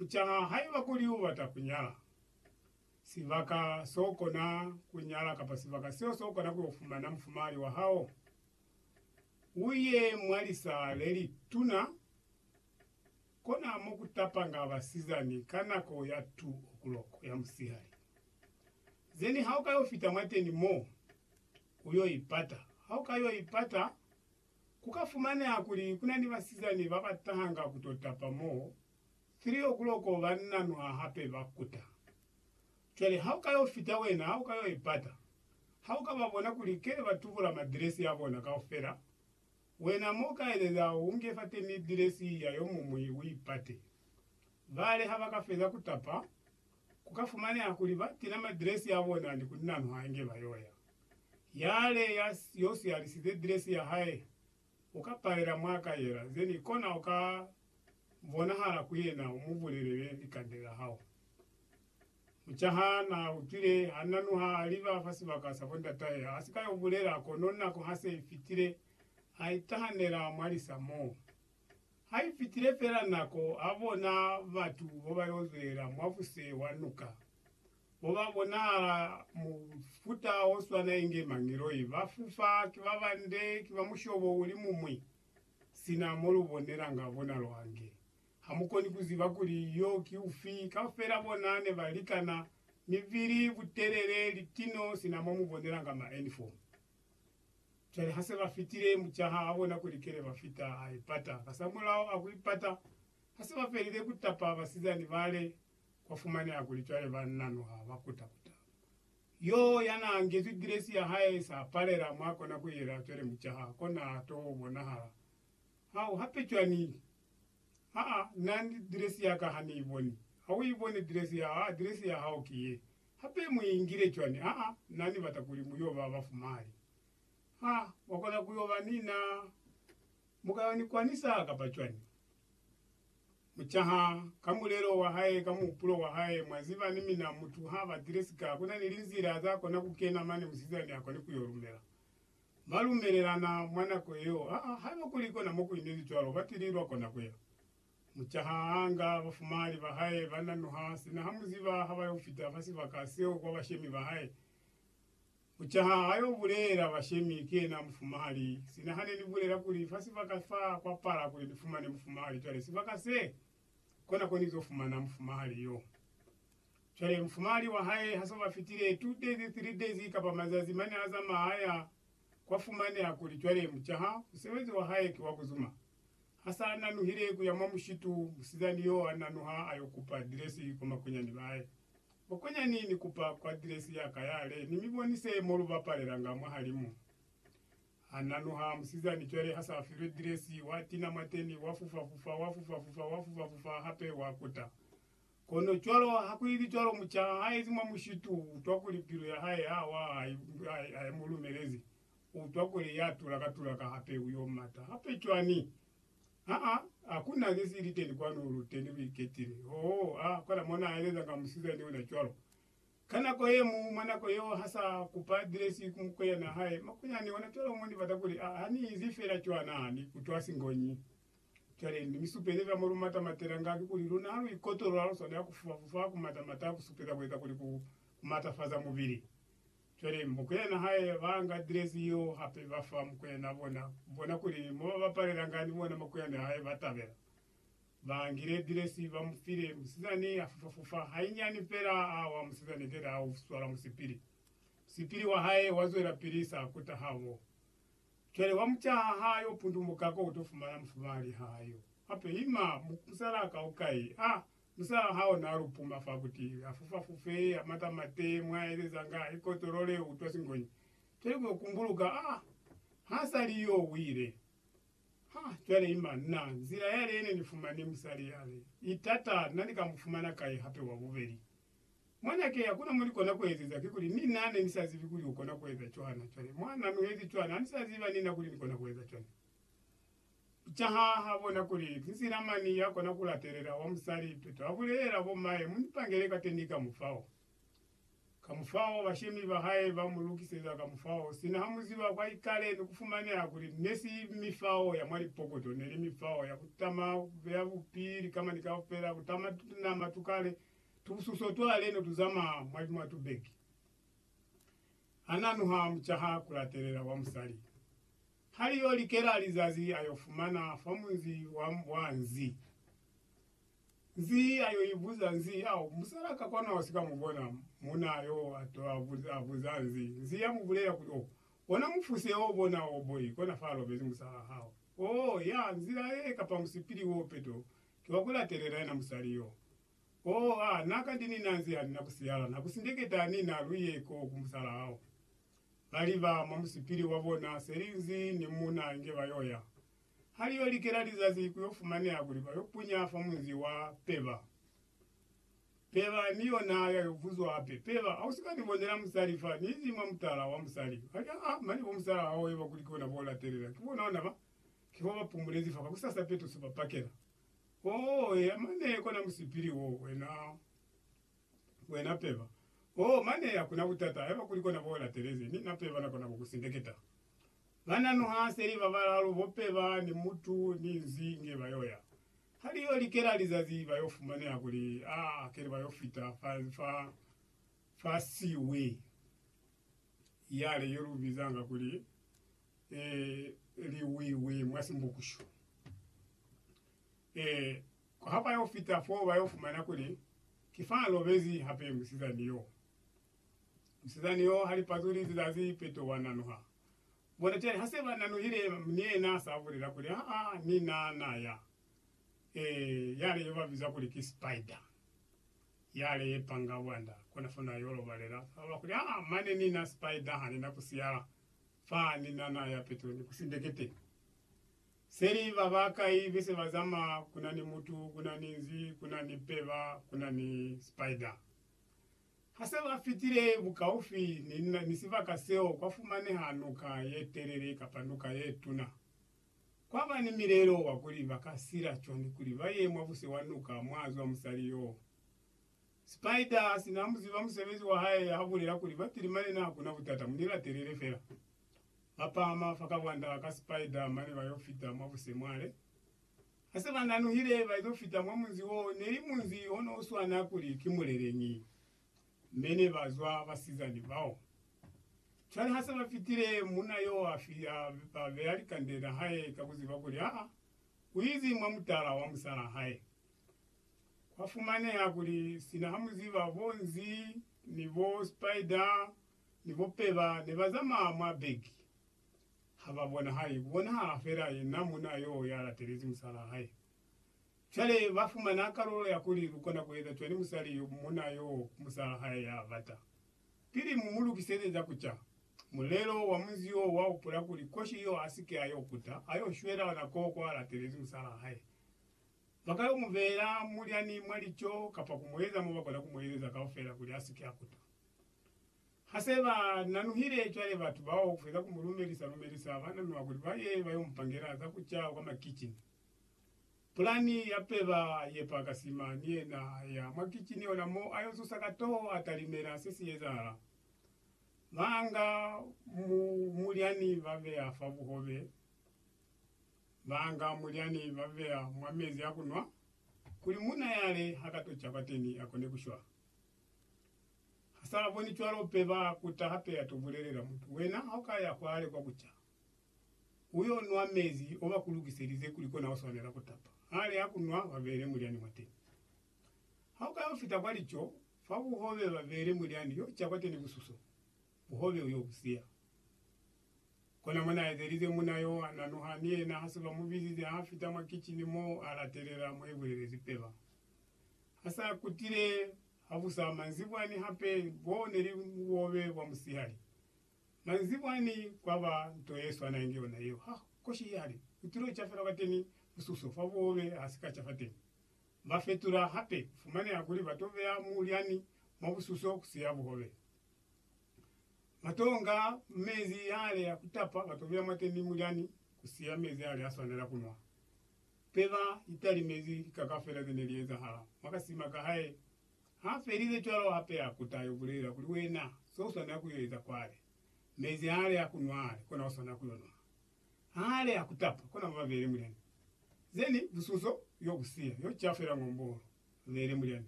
Kucaha haiba kuli ubata kunyala, sibaka sokona kunyala kapa sibaka seo sokona kuyo fumana mufumahali wahao, uye mwa lisa lelituna, kona mokutapanga basizani ka nako ya 2 o'clock ya musihali. Zeni haukayo fita mwateni mo, uyo ipata. Haukayo ipata, kuka fumaneha kuli kuna ni basizani babatahanga kuto tapa mo Three o'clock banna nwa hape ba kuta. Cwale ha u ka yo fita wena, ha u ka yo i pata, ha u ka ba bona kuli kele ba tubula ma dress ya bona kaufela, wena mo u ka elela u nge fateni dress ya yo muñwi u i pate. Bale ha ba ka feza ku tapa, ku ka fumaneha kuli ba tina ma dress ya bona ni ku nanwa inge ba yo ya. Yale ya yo siyalisize dress ya hae uka palela mwa ka yela then kona uka bonahala ku yena umubulelele likande la hao. Mucaha na utwile ha nanuha aliba fa sibaka sa bo ndatahe asika yo bulela kono nako hase ifitile a itahanela mwa lisa moo. Ha ifitile fela nako abona batu bobayo zwelela mwabuse wa nuka. Mo ba bonahala mufuta o swana inge mangiloi. Ba fufa, ki ba bande, ki ba mushobo uli mumwi. Sina mo lu bonelanga bona lwange, ha mu koni ku ziba kuli yo ki ufi. Kaufela bona ne ba likana, mibili, butelele, litino, sina mo mu bonelanga maenifomu. Cwale ha se ba fitile, mucaha a bona kuli kele ba fita, a ipata. Kasamulaho a ku ipata, ha se ba felile ku tapa basizani bale, kwa fumaneha kuli cwale ba nano ha ba kuta-kuta. Yo ya n'a ngezwi dresi ya hae, s'a palela mw'a kona ku yela, cwale mucaha ko n'a t'o bonahala. Ha u hape cwani? Ha a, na ni dresi ya ka ha ni i boni. Ha u i boni dresi ya hao? Ha, dresi ya hao ki ye. Hape mu i ngile cwani? Ha, na ni bata kuli mu y'o ba bafumali. Ha wa kona ku y'o ba ni na bukayoni kwani sa, kapa cwani? mucaha ka mulelo wa hae ka muhupulo wa hae, mwa ziba ni mina mutu ha batile sika kuna ni linzila za kona ku kena mane musizani a kone ku yo lumela. Ba lumelelana mwa nako yeo, aa haiba kuli kona mo ku inezi cwalo ba tili lwa kona ku ya. Mucaha a nga bafumali ba hae ba nanuha, sina ha mu ziba ha ba yo fita fa sibaka seo kwa bashemi ba hae, Ku caha ha yo bulela bashemi ki yena mufumahali, sina hane ni bulela kuli fa sibaka fa kwa pala kuli ni fumane mufumahali cwale sibaka se, kona ko ni zo fumana mufumahali yo. Cwale mufumahali wa hae ha so ba fitile two days, three days kapa mazazi mane a zamaha a ya, kwa fumaneha kuli cwale mu caha musebezi wa hae ki wa ku zuma. Ha sa nanuhile ku ya mwa mushitu, musizani yo a nanuha a yo kupa dilesi kwa makunyani ba hae. Bokunya ni ni kupa ku address ya ka ya le ni mi bonise mo lu bapalela nga mwahalimu. Ha nanuha musizani cwale ha sa filwe dress, wa tina mwateni, wa fufa fufa, wa fufa fufa, wa fufa fufa hape wa kuta. Kono cwalo ha ku ili cwalo muca ha ezi mwa mushitu, u utwa kuli pilu ya hae ha wa ha i mu lumelezi. U utwa kuli ya tulaka tulaka hape u yo mata hape cwani? Aa, a ku na ze si li teni kwanu, lu teni lu iketile. Oh, a kola mo na eleza nga musizani ona cwalo. Ka nako ye mu, mwa nako yeo, ha sa kupa adiresi ku mukweyana hae, makunyani ona cwalo, mo ni bata kuli a, ha ni inzi fela cwana, ni ikutwa singonyi. Cwale, ni mi supeze zwa mo lu mata matela nga, kikuli luna ha lu ikotolola, lu swanela ku fufa-fufa, ku mata-mata, ku supeza ku eza kuli ku, ku matafaza mubili. Cwale mukwena hae ba nga direzi yeo hape ba fa mukwena bona, ku bona kuli mo ba bapalelanga ni bona makwene hae ba tabela. Ba ngile direzi ba mu file, musizani a fufa-fufa hainyani fela a wa, musizani keta a uswala musipili. Musipili wa hae wa zwelapili sa kuta habo. Cwale wa mu caha ha yo pundumuka ko u to fumana mufumali ha yo. Hape ima, musalaa kaukai a Musalaa hao naa lu puma fa kuti a fufafufe, a matamate, mwa aelezanga, a ikotolole, u utwa singonyi. Cwale ku yo kumbuluka, a ha sa li yo wile. Ha, cwale ima, na, nzila yale ye ne ni fumani musali yale, i tata, na ni ka mu fumana kai hape wa bubeli? Mwana ke, hakuna mo ni kona ku ezeza, kikuli, ni na ne ni sa zibi kuli u kona ku eza cwana. Cwale, mwa na nuhezi cwana, ha ni sa ziba ni na kuli ni kona ku eza cwana. Kicaha ha bona kuli ki nzila mañi ya kona ku latelela wa musali peto a bulelela bo m'ahe mu ni pangele kateni kamufao. Kamufao, bashemi ba hae ba mu lukiseza kamufao sina ha mu ziba kwa ikale ni ku fumaneha kuli ne si mifao ya mwa lipokoto, ne li mifao ya ku tama ku beya bupi likama ni kaufela, ku tama tunama tu kale, tubususo twa leno tu zamaya mwa mwa tubeki. Ha na nuha mucaha ku latelela wa musali. Ha li yo likela lizazi a yo fumana fa munzi wa, wa nzi. Nzi a yo i buza, nzi, Au, musala ka kona ho si ka mu bona. Munaa yo a to a buza, a buza nzi. Nzi ya mu bulela kuli, Oh, bona mufuse o, bona o, boy, kona fa a lobezi musalaa hao. Oh, ya, nzila ye, kapa musipili wo peto, ki wa ku latelela yena musali yo. Oh, a, na ka ndi ni na nzi, ha ni na ku siyala, na ku sindeketa, ni na lu ye ko ku musalaa hao. ba liba mwa musipili wa bona selinzi ni muuna inge ba yo ya. Ha li yo likela lizazi ku yo fumaneha kuli ba yo punya fa munzi wa Peba. Peba ni yona ya yo buzwa hape, Peba, ha u si ka ni bonela musali fa ni izi mwa mutala wa musali? Ba li, Aa, mane bo musala hao eba kuli ki ona bo latelela, ki bona ona ba, ki fo ba pumulezi fa, kakusasa petuso ba pakela. Oh, eya mane kona musipili wo, wena. Wena peba. Oh, mane hakuna butata haiba kuli kona bo latelezi, mi na peba na kona ku ku sindeketa. Bana nu ha seli ba balalu bo peba ni mutu ni nzi nge ba yo ya. Ha li yo likela lizazi ba yo fumaneha kuli, ah, hakeli ba yo fita fa, fa, fa siwi yale ye lu bizanga kuli, eh, liwiwi mwa Simbukushu. Eh, Ha ba yo fita foo, ba yo fumana kuli ki fa a lobezi hape musizani yo. Musizani yo ha li pazuli zizazi peto wa nanuha. Bona cwale, ha se ba nanuhile, ni yena sa bulela kuli, Aa, ni na na ya. Ee, yale yo ba biza kuli ki spider, yale ye panga bwanda, kona fo na yo lobalela. Sa bula kuli, Aa, mane ni na spider, ha ni na ku siyala fa, ni na na ya peto ni ku sindeketeni. Seli ba ba kai be se ba zamaa kuna ni mutu kuna ni nzi kuna ni peba kuna ni spider. Ha se ba fitile bukaufi ni ni sibaka seo kwa fumaneha nuka ye telele kapa nuka ye tuna. Kwa ba ni milelo wa kuli ba ka sila cwani kuli ba ye mwa buse wa nuka mwa zwa musali yo. Spider si na mu ziba musebezi wa hae ha bulela kuli ba tilimanena ha kuna butata mu ni latelele fela. Ba pama fa kabwanda ka Spider mane ba yo fita mwa busemwale. Ha se ba nanuhile ba izo fita mwa munzi wo ne li munzi o no swana kuli ki Muleleñi, me ne ba zwa basizani bao. Cwale ha se ba fitile, munna yo a fita a beya likande la hae ka ku ziba kuli ha u izi mwa mutala wa musalaa hae. Kwa fumaneha kuli sina ha mu ziba bo Nzi ni bo Spider ni bo Peba ne ba zamaya mwa beki, ha ba bona hae ku bonahala fela yena munna yo ya latelezi musalaa hae. Cwale ba fumana kalulo ya kuli lu kona ku eza cwani musali yo munna yo ku musalaa hae ya bata. Pili mu mu lukiseze za ku ca, mulelo wa munzi yo wa hupula kuli koshi yo a si ke a yo kuta, a yo shwela ona koo kwa latelezi musalaa hae. Ba ka yo mu beela mulyani mwa lico kapa ku mu eza mo ba kona ku mu ezeza kaufela kuli a si ke a kuta. Ha se ba nanuhile cwale batu bao feza ku mu lumelisa lumelisa ba nanua kuli ba ye ba yo mu pangela za ku ca kwa makicini. Pulani ya peba ye pa ka sima ni yena a ya mwa kicini ona mo a yo zusa ka toho a talimela se si ezahala. Ba nga mulyani ba beya fa buhobe, ba nga mulyani ba beya mwa mezi a ku nwa kuli munna yale ha ka to ca kwateni a kone ku shwa. Ha sa boni cwalo pe ba kuta hape ya to bulelela mutu, Wena ha u ka ya kwale kwa kuca, u yo nwa mezi o ba ku lukiselize kuli kona u swanela ku tapa. Ha li ha ku nwa, ba beele mulyani mwateni. Ha u ka yo fita kwa lico, fa buhobe ba beele mulyani yo ca kwateni ku suso, buhobe u yo bu siya. Kona mo na ezelize muna yo, a nanuha, ni yena ha se ba mu bizize, ha fita mwa kicini mo, a latelela mo i bulelezi pe ba ha sa kutile. Habusa manzibwa ni hape bo ne li bubobe bwa musihali. Manzibwa ni kwa ba nto ye swana inge yona yeo. Ha koshi i hali, u tilo ca fela kwateni mususo fa bubobe ha si ka ca fateni. Ba fetula hape, fumaneha kuli ba to beya mulyani mwa bususo ku siya buhobe. Ba to nga mezi yale ya ku tapa ba to beya mwateni mulyani ku siya mezi yale a swanela ku nwa. Peba italimezi lika kafela zene liezahala mwa kasima kahae. Ha felize cwalo hape a kuta ayo bulela kuli, Wena, se uswanela kuyo eza kwale, mezi hale a kunwa hale, kona uswanela kuyo nwa. Hale a kutapa, kona ba beele mulyani. Zeni bususo yo busiya, yo cafela ng'ombolo, ba beele mulyani.